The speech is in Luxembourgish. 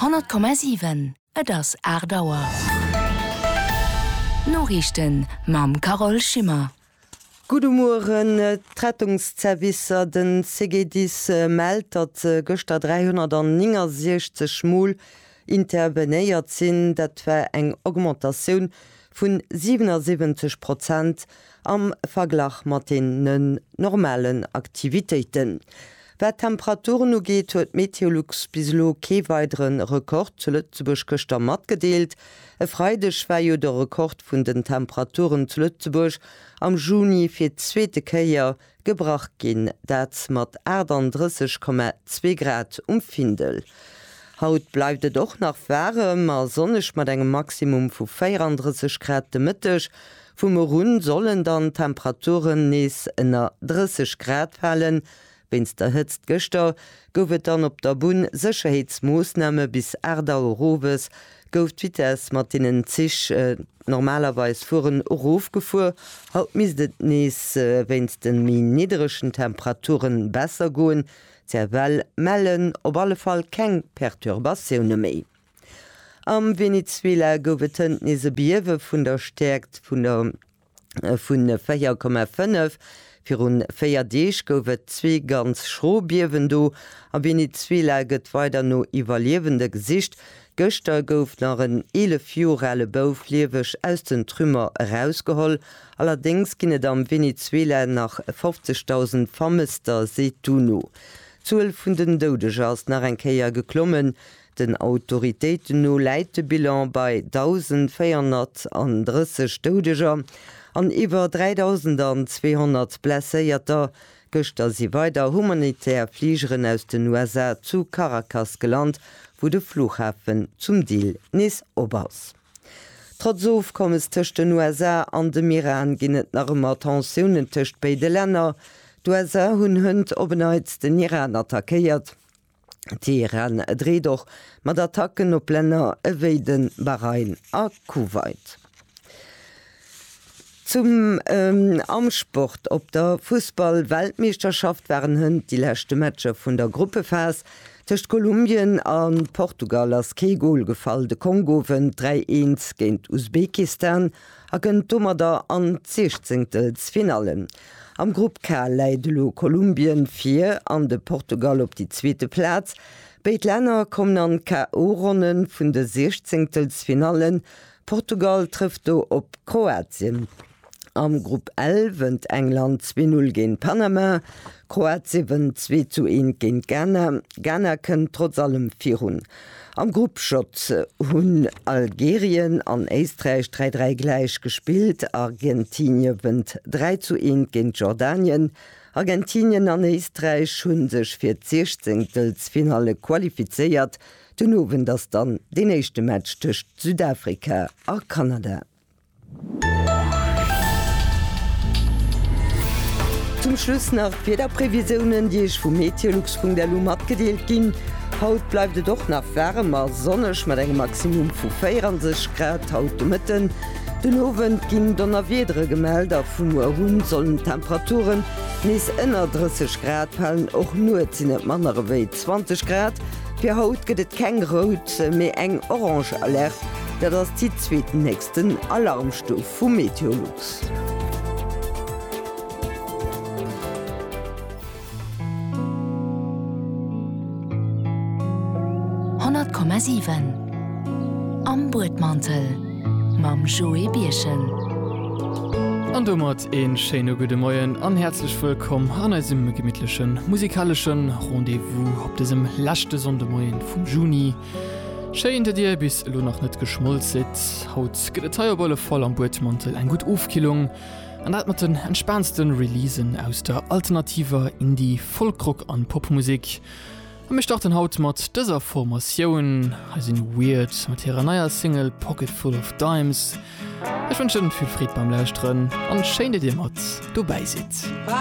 Honnert Komma siwen, et ass aacht Auer. D'Noriichten mam Carole Schimmer. Gudde Mueren. D'Rettungszervicer, den CGDIS, mellt, datt gëschter 369 Mol Intervenéiert sinn. Dat war eng Augmentatioun vun 77 Prozent am Verglach mat deenen normalen Aktivitéiten. Wat d'Temperaturen ugeet, huet Meteolux bis elo kee weidere Rekord zu Lëtzebuerg gëschter matgedeelt. E Freideg war jo de Rekord vun den Temperaturen zu Lëtzebuerg am Juni fir d'zweete Kéier Gebrach ginn, dat mat 38,2 Grad um Findel. Haut bleift et och nach waarem a sonneg mat engem Maximum vu 34 Grad. De Mëtteg vum Moru sollen dann d'Temperaturen nees ënner 30 Grad falen. Wéinst der Hëtzt gëschter gouf et dann op der Bunn Sécherheetsmoossname bis 8 Auer owes gouf d'Vitess, mat deenen d'Zich normalerweis fueren, erofgefuer. Haut misst et nees wéinst de méi nidderegen Temperature besser goen. D'CFL mellen op alle Fall keng Perturbatioune méi. Am Venezuela gouf et hënt nees e Biewe vun der Stäerkt vun der. vu 4,5. Viru véier Deeg gouf et zwee ganz schro Biewen do. A Venezuela gëtt weider no Iwwerliewende gesicht. Gëschter gouf nach en 11 Joer ale Bouf lieweg aus den Trümmer erausgeholl. Allerdéngs ginn et am Venezuela nach 50.000 Vermësster, seet d'UNO. D'Zuel vun den Doudeger ass nach eng Kéier geklommen. Den Autoritéiten no läit de Bilan bei 1.430 Doudeger an iwwer 3.200 Blesséierter. Gëschter si weider humanitär Fligeren aus den USA zu Caracas gelant, wou de Flughafen zum Deel nees op ass. Trotz Ofkommes tëscht den USA an dem Iran ginn et nach ëmmer Tensiounen tëscht béide Länner. D'USA hunn hënt op en Neits den Iran attackéiert. Teheran dreet och mat Attacken op Länner ewéi de Bahrain a Kuwait. Zum am Sport, Op der Fussball-Weltmeeschterschaft waren hënt déi leschte Matcher vun der Gruppephas. Tëscht Kolumbien a Portugal ass kee Gol gefall. De Kongo wënnt 3-1 géint Usbekistan a kënnt domadder an d'Siechzéngtelsfinallen. Am Grupp K läit elo Kolumbien vir an de Portugal op déi zweete Plaz. Béid Länner kommen an d'KO-Ronne vun de Siechzéngtelsfinallen. Portugal trëfft do op Kroatien. Am Grupp L wënnt England zwee Null géint Panama. Kroatie wënnt zwee zu eent géint Ghana. Ghana kënnt trotz allem virun. Am Grupp J hunn Algerien an Éisträich 3, 3 gläich gespillt, Argentinie wënnt 3 zu 1 géint Jordanien. Argentinien an Éisträich hu sech fir d'Siechzéngtelsfinalle qualifizéiert. Den Owend ass dann deen éischte Match tëscht Südafrika a Kanada. Zum Schluss nach d'Wiederprevisiounen, déi Iech vu meteolux.lu matgedeelt ginn. Haut bleift et och nach waarem a sonneg mat engem Maximum vu 24 Grad haut de Mëtten. Den Owend ginn Donnerwiedere gemellt a vu muer un sollen d'Temperaturen nees ënner 30 Grad falen. Och nuets sinn et manner ewéi 20 Grad. Fir haut gëtt et keng rout, mee eng orange Alerte. Dat ass déi zweetnächsten Alarmstuf vu Meteolux. Honnert Komma siwen Am Buedmantel mam Joé Birchen. An domat een schéine gudde Moien an häerzlech wëllkomm an eisem gemittlechen musikaleschen Rendez-vous. Op dësem leschte Sonndemoien vum Juni, schéin dat dir bis elo nach net geschmolz sidd. Haut gëtt et hei op alle Fall am Buedmantel eng gutt Ofkillung, an dat mat den entspaansten Releasen aus der alternativer Indie-, Folkrock an Popmusek. A mir starten haut mat dëser Formatioun. Hei sinn Weird mat hirer neier Single Pocket Full of Dimes. Ech wënschen vill Freed beim Lauschteren, an schéin dat dir mat dobäi sidd.